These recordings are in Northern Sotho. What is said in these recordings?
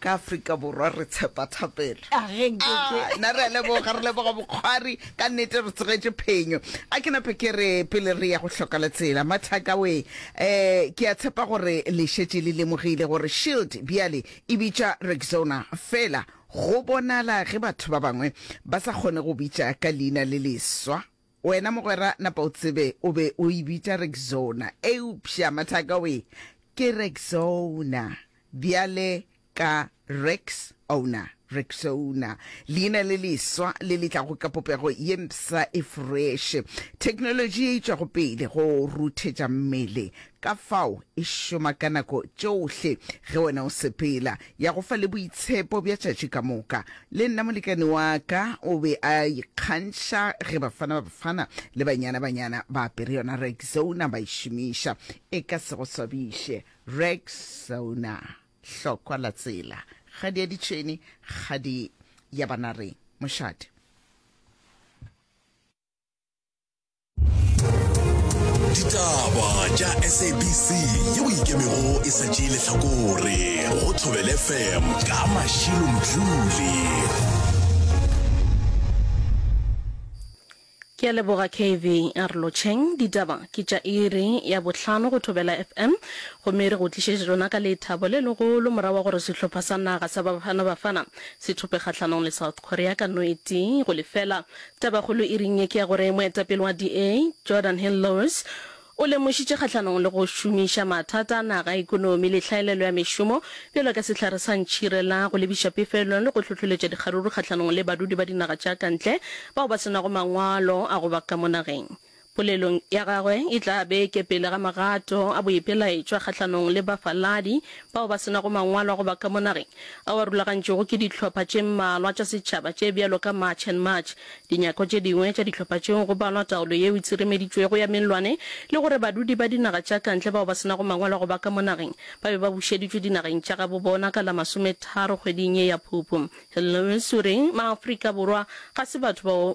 Ka Afrika Borwa re tshepa thapelo. A ge nke ke. Ah, na re a leboga, re leboga bokgwari. Ka nnete re tsegetše phenyo. A ke nape ke re pele re ya go hloka letsela, Mathaka we, um ke a tshepa gore le šetše le lemogile gore Shield bjale e bitša Rexona. Fela go bonala ge batho ba bangwe ba sa kgone go bitša ka leina le leswa. Wena mogwera napa o tsebe o be o e bitša Rexona, eupša mathaka o e ke Rexona bjale ka Rex Owner, Rexona, leina le leswa le le tlago ka popego ye mpsha e freše, theknolotši ye e tšwago pele go ruthetša mmele ka fao e šoma ka nako tšohle ge wena o sepela, ya go fa le boitshepo bja tšatši ka moka. Le nna molekane wa ka o be a ikgantšha ge bafana ba bafana le banyana banyana ba apere yona Rexona ba e šomiša. E ka se go swabiše, Rexona, hlokwa la tsela, kgadi ya ditšhwene, kgadi ya banareng, mošate. ditaba tša sabc ye o ikemego e sa tšee lehlakore go thobele fm ka mašilo mdluli ke a leboga kv arlocheng ditaba ke tša iri ya bohlano go thobela fm gomme re go tlišetše tsona ka lethabo le legolo mora wa gore sehlopha sa naga sa bafana bafana se thope kgahlanong le south korea ka noeti go lefela Tabakgolo iring ye ke ya gore moetapele wa DA, Jordan Hill-Lewis, o lemošitše kgahlanong le go šomiša mathata a naga a ekonomi le tlhaelelo ya mešomo bjalo ka sehlare sa ntšhire la go lebiša pefelong le go hlohleletša dikgaruru kgahlanong le badudi ba dinaga tša ka ntle bao ba se nago mangwalo a go ba ka mo nageng. Polelong ya gagwe e tla be e kepele ga magato a boipelaetšwa kgahlanong le bafaladi bao ba se nago mangwalo a go ba ka mo nageng, ao a rulagantšwego ke dihlopha tše mmalwa tša setšhaba tše bjalo ka March and March. Dinyako tše dingwe tša dihlopha tšeo go balwa taolo yeo e tsiremeditšwego ya mellwane le gore badudi ba dinaga tša kantle bao ba se nago mangwalo a go ba ka mo nageng ba be ba bušeditšwe dinageng tša gabo bona ka la masometharo kgweding ye ya Phupu. Hello Missouri, Maafrika Borwa ga se batho bao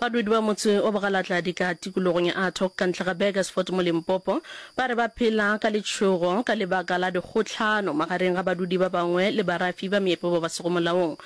Badudi ba motse o Bogalatladi ka tikologong ya Athock ka ntle ga Burgersfort mo Limpopo ba re ba phela ka letšhogo ka lebaka la dikgohlano magareng ga badudi ba bangwe le barafi ba meepo ba ba sego molaong.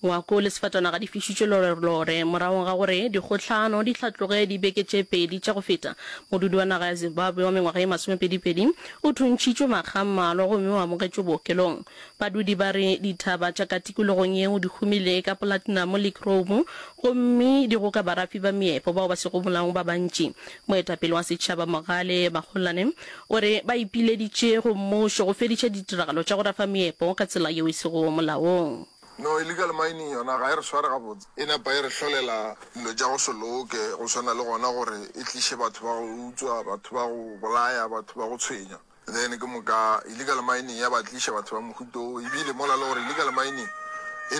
Ngwako le sefatanaga di fišitšwe lorelore morago ga gore dikgohlano di hlatloge dibeke tše pedi tša go feta. Modudi wa naga ya Zimbabwe wa mengwaga ye masomepedipedi o thuntšhitšwe makga a mmalwa gomme o amogetšwe bookelong. Badudi ba re dithaba tša ka tikologong yeo di humile ka polatinamo le kroumo gomme di goka barafi ba meepo bao ba sego molaong ba bantši. Moetapele wa setšhaba Mogale Magolane o re ba ipileditše go mmušo go fediša ditiragalo tša go rafa meepo ka tsela yeo e sego molaong. No illegal mining yona ga e re sware gabotse, e napa e re hlolela dilo tša go se loke go swana le gona gore e tliše batho ba go utswa, batho ba go bolaya, batho ba go tshwenya. Then ke moka illegal mining ya ba tliša batho ba mohuto wo, ebile mola le gore illegal mining e.